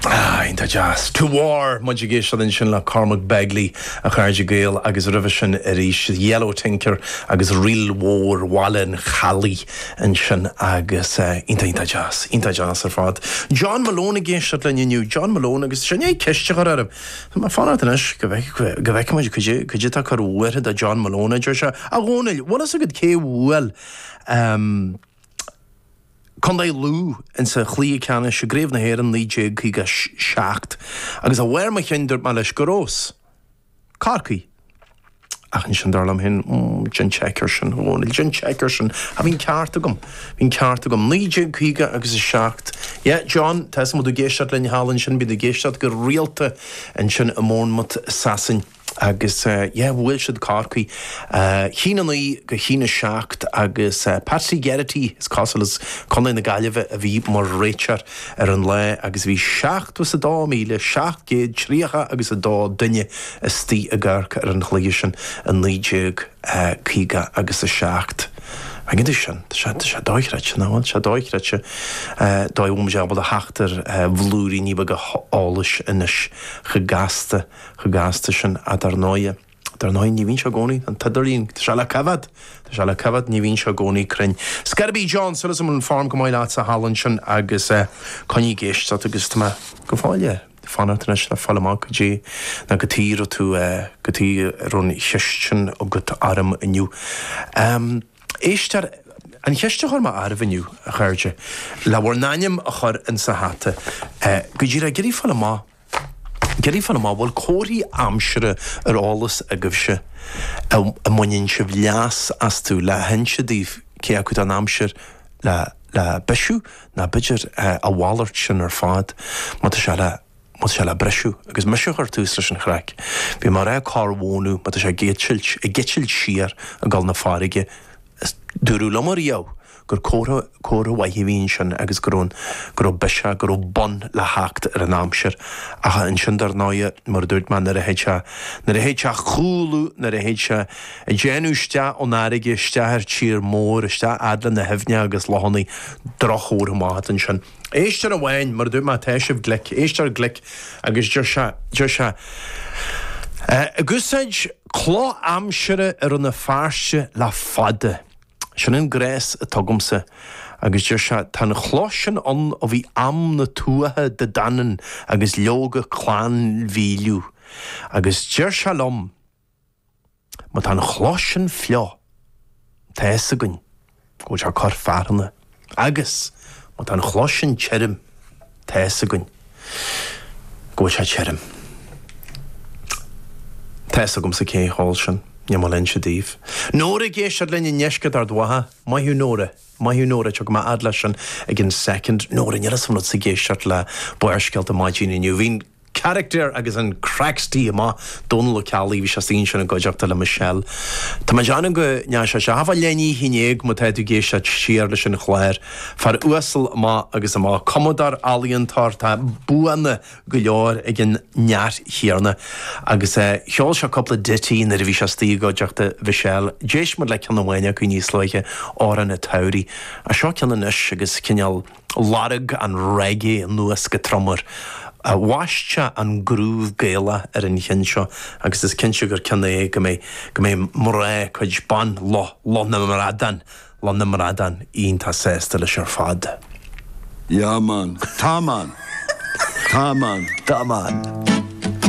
Ah, iontach deas. To War, muid ag éisteacht ansin le Cormac Begley, a chairde Gael, agus roimhe sin arís The Yellow Tinker agus ríl mhór Bhaile an Chalaidh ansin agus iontach, iontach deas, iontach deas ar fad. John Malone ag éisteacht linn inniu, John Malone agus sin é, ceist a chur orm. Fan ort anois go bhfeicimid cad é tá cur bhuartha do John Malone, a deir sé. A Dhónaill, bhfuil fhios agat cé bhuail Condae Lú ins an chluiche ceannais i gCraobh na hÉireann 1957? Agus ó bharr mo chinn dúirt mé leis gur ós Corcaigh. Ach ansin dar liom féin, Déan check ar sin, a Dhónaill, déan check ar sin. Ah, bhí an ceart agam. Bhí an ceart agam. Naoi déag caoga agus a seacht. Yeah, John, tá 'fhios a'm, ag éisteacht linn thall ansin, bíonn ag éisteacht go rialta ansin i mBournemouth, i Sasain. Agus eh, yeah, bhuail siad Corcaigh eh, a haon a naoi go haon a seacht agus eh, Patsy Geraghty, is cosúil, as Contae na Gaillimhe a bhí mar réiteoir ar an lá agus bhí seachtó is a dó míle, seacht gcéad tríocha agus a dó duine, istigh ag amharc ar an gcluiche sin i 1950 agus 7. An fhad sin, tá sé, tá sé do-chreidte, nach bhfuil? Tá sé do-chreidte, dóigh a bhfuilimid ábalta a theacht ar bhlúiríní beaga eolais anois. Chomh gasta, chomh gasta sin. Ach dar ndóighe, dar ndóighe, ní bhíonn sé i gcónaí, an t-idirlíon, tá sé le coimhéad, tá sé le coimhéad, ní bhíonn sé i gcónaí cruinn. Scor ar bith John, súil agam an fhoirm go maith leat thall ansin agus coinnigh ag éisteacht agus tá mé go fóill. fanacht anois le fáil amach cad chuige ná cad chuige a raibh tú cad chuige a raibh an cheist sin agat orm inniu. Éist ar an cheist a chuir mé oraibh inniu, a chairde, le bhur n-ainm a chur in sa hata go díreach ag iarraidh fáil amach ag iarraidh fáil amach bhfuil comharthaí aimsire ar eolas agaibhse a mbaineann sibh leas astu le hinse daoibh cé acu tá an aimsir le le bisiú Ná b'fhéidir a mhalairt sin ar fad má tá sé le, má tá sé le briseadh. Agus mise a chuir tús leis an chraic. Bhí mé a rá corr mhónadh má tá sé ag eitilt, ag eitilt siar ag gabháil na farraige. Is dúradh liom ariamh gur comhartha, comhartha mhaith a bhí ansin agus go raibh, go raibh biseach, go raibh bun le theacht ar an aimsir. Ach ansin dar ndóighe, mar a dúirt mé, nuair a théid sé, nuair a théid sé a chúlú, nuair a théid sé, Ag déanamh isteach ó'n fhairrge, isteach ar tír mór, isteach fhad le na h-aibhne agus lochannaí. Droch-chomhartha amach atá annsin. Éisteoir amháin, mar a dúirt mé tá sibh glic, éisteoir glic agus deir sé, deir sé Ag úsáid cloch aimsire i Rann na Feirste le fada. Sin an gléas atá agamsa. Agus deir sé Tá an chloch sin ann ó bhí am na Tuatha Dé Danann agus leoga Clann Mhíleadh. Agus deir sé liom. Má tá an chloch sin fliuch, tá fhios againn go bhfuil sé ag cur fearthainne, agus má tá an chloch sin tirim, tá fhios againn go bhfuil sé tirim. Tá fhios agamsa cé thall sin, níl mé ag inse daoibh. Nóra ag éisteacht linn i ndeisceart Ard Mhacha. Maith thú Nóra. Maith thú Nóra, tiocfaidh mé fhad leis sin i gceann soicind. Nóra, níl fhios a'm an raibh tusa ag éisteacht le Barrscéalta maidin inniu. Bhí an. Character agus an craic istigh amach. Dónal Ó Ceallaigh, bhí sé istigh ansin i gcuideachta le Michelle. Tá mé ag déanamh go ndéanfaidh sé seo. Thart fá leath i ndiaidh a haon déag má tá tú ag éisteacht siar leis an chlár. Fear uasal amach agus amach. Cumadóir, ealaíontóir, tá buanna go leor ag an fhear chéanna. Agus cheol sé cúpla ditty nuair a bhí sé istigh i gcuideachta Mhichelle. D'éist muid le ceann amháin acu níos luaithe, Amhrán an tSamhraidh. Seo ceann anois agus cineál. Lorg an reggae anuas go trom air. Bhaist sé an groove Gaelach ar an cheann seo agus is cinnte gur ceann é go mbeidh go mbeidh mná cuid ban Loch Loch na mBradán Loch na mBradán iontach sásta leis ar fad. Yeah man. Tá man. Tá man. Tá man.